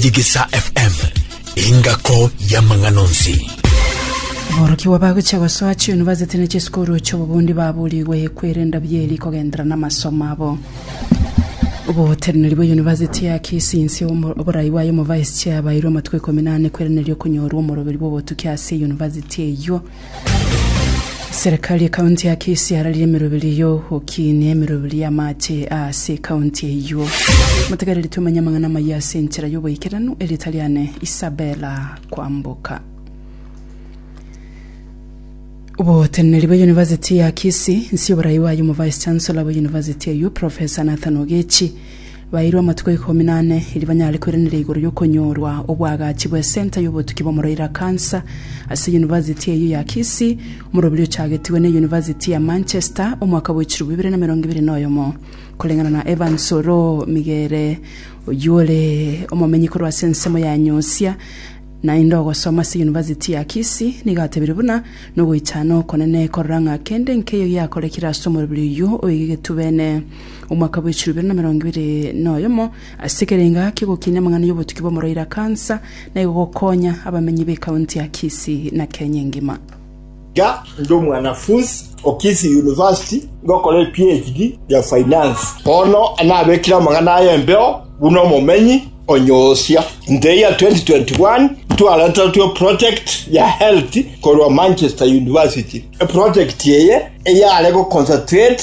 Digisa FM, engako y'amang'ana onsi. Aborokigwa bagochia gosoa chiunivasiti na chisukuru chi'obobundi baburigwe kwerenda bieri kogenderera n'amasomo abo. Oboteneneri bw'eyunivasiti ya Kisii inse y'omo- oborai bwaye omovice chair bairwe amatuko ikomi na ane kwereneria okonyorwa omoroberi bw'obotuki ase eyunivasiti eyio. Serikali y'Ekaunti ya Kisii yararire emeroberi y'ogokinia emeroberi y'amache ase ekaunti eyio. Motegereri tumenye amang'ana amaya ase enchera y'oboikeranu erieta riane Isabella Kwamboka. Oboteneneri bwa University ya Kisii, inse y'oborai bwaye omo Vice Chancellor bwa University eyio Professor Nathan Ogechi Baeirwe amatuko ikomi na ane erio banyare koiraneria igoro y'okonyorwa obwagachi bw'esenta y'obotuki bw'omoroira kansa ase Yunivasiti eyio ya Kisii, omoroberi ochagetigwe ne Yunivasiti ya Manchester omwaka bwa echirobo ibere na emerongo ebere na oyomo. Koreng'ana na Evans Oroo Migere, oyio ore omomenyi korwa ase ensemo ya Nyosia, naende ogosoma ase Yunivasiti ya Kisii, nigo atebirie buna nogoichana okonene korora ng'a kende nkeiyo giakorekire ase omoroberi oyio oige getubene. Omwaka bw'echiro ibere na emerongo ebere noyomo, ase ekerengo ake gokinia amang'ana y'obotuki bw'omoroiro a kansa, na igo gokonya abamenyi b'ekaunti ya Kisii na Kenya engima. Iga ndi omwanafunsi o Kisii University ngokora e PHD ya Finance. Bono nabekire amang'ana aya embeo buna omomenyi o Nyosia. Inse ya 2021 ntwareterwe eproject ya health korwa Manchester University. Eproject eye eyare goconcentrate.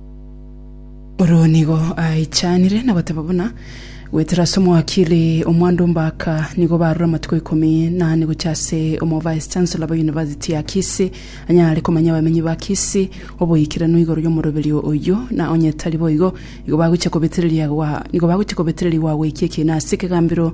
Oro nigo aichanire na goteba buna gwetera ase omwakili omwando mbaka nigo barure amatuko ikomi nane gocha ase omo vice chancellor ba university ya Kisii anyare komanya abamenyi ba Kisii oboikeranu igoro y'omoroberio oyo na onye tari boigo nigo bagocha kobetereria gwa nigo bagocha kobetereria gwa goikia ekina ase ekegambero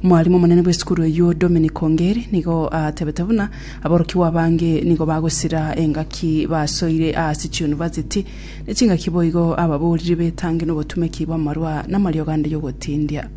Omwarimu omonene bw'esukuru eyio Dominic Ongeri nigo atebete buna aborokigwa abange nigo bagosira engaki basoire ase chiyunivasiti ne chingaki boigo ababoriri betange nobotumeki bw'amarwa namariogo ande yogotindia.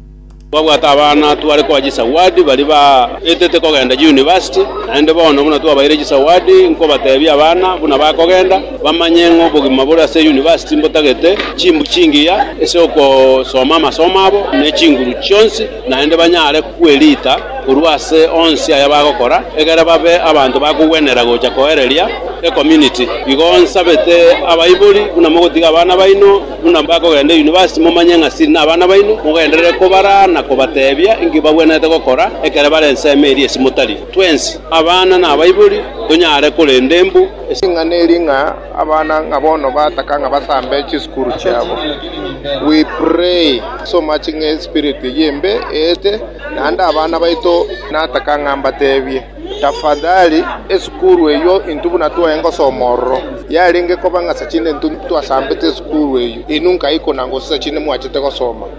Twabwate abana tware koa chisawadi baria baetete kogenda chiyunivasiti, naende bono buna twabaire chisawadi nkobatebia abana buna bakogenda. bamanye ng'a obogima bore ase University mbotagete chimbu chingiya ase ogosoma amasomo abo ne chinguru chionsi, naende banyare kwerita korwa ase onsi aya bagokora, egere babe abanto bakogwenerera gocha koereria ecommunity. Igo nsabete abaibori, buna mogotiga abana baino, buna bakogenda University momanye ng'a siri nabana baino, mogenderere kobaraa na kobatebia inki bagwenerete gokora ekero bare ensemo eria esimo tari. Twensi, abana na abaibori, tonyare korenda embu. Esing'ana eri ng'a abana ng'a bono bataka ng'a basambe chisukuru chiabo. We pray so much ng'a espirit eye embe eete naende abana baito nataka ng'a mbatebie tafadhali esukuru eyio intwe buna twae ngosoma ororo yarenge koba ng'a sachinde intwe ntwasambete esukuru eyio inwe nkaikuna gose sachinde mwachete gosoma.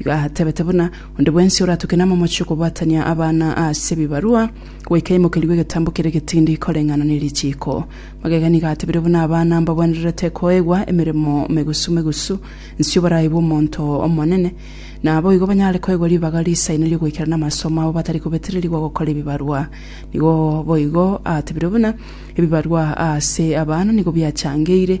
Igo atebete buna onde bwensi oratuke namomoche okobwatania abana ase ebibarua, goika aimokerigwe egetambo kere getindi koreng'ana ne richiiko. Magega nigo atebire buna abana mbabwenererete koegwa emeremo megusu megusu inse oborai bw'omonto omonene, na naboigo banyare koegwa ribaga riisaine ri'ogoikera namasomo abo batari kobetererigwa gokora ebibarua. Nigo boigo atebire buna ebibarua aase abana nigo biachangeire,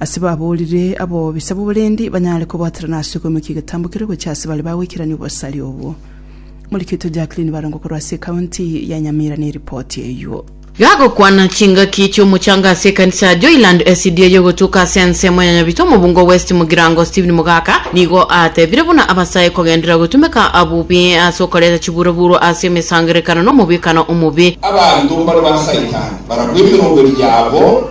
Ase baboorire abo bisa boborendi banyare kobwaterana ase okoimokia egetambo keria gochia ase bare bagweikerania obosari obwo. Morikito Jacqueline Barongo korwa ase ekaunti ya Nyamira neripoti eyio. Gagokwana chingaki chi'omochanga ase ekanisa ya Joyland SDA yogotuka ase ensemo ya Nyabito Mobungo West Mogirango Stephen Mogaka nigo atebire buna abasae kogendera gotumeka bobe ase okoreta chiburoburo ase emesangerekano nomobwekano omobe. Abanto mbare ba Saitani baragwa emeroberi yabo.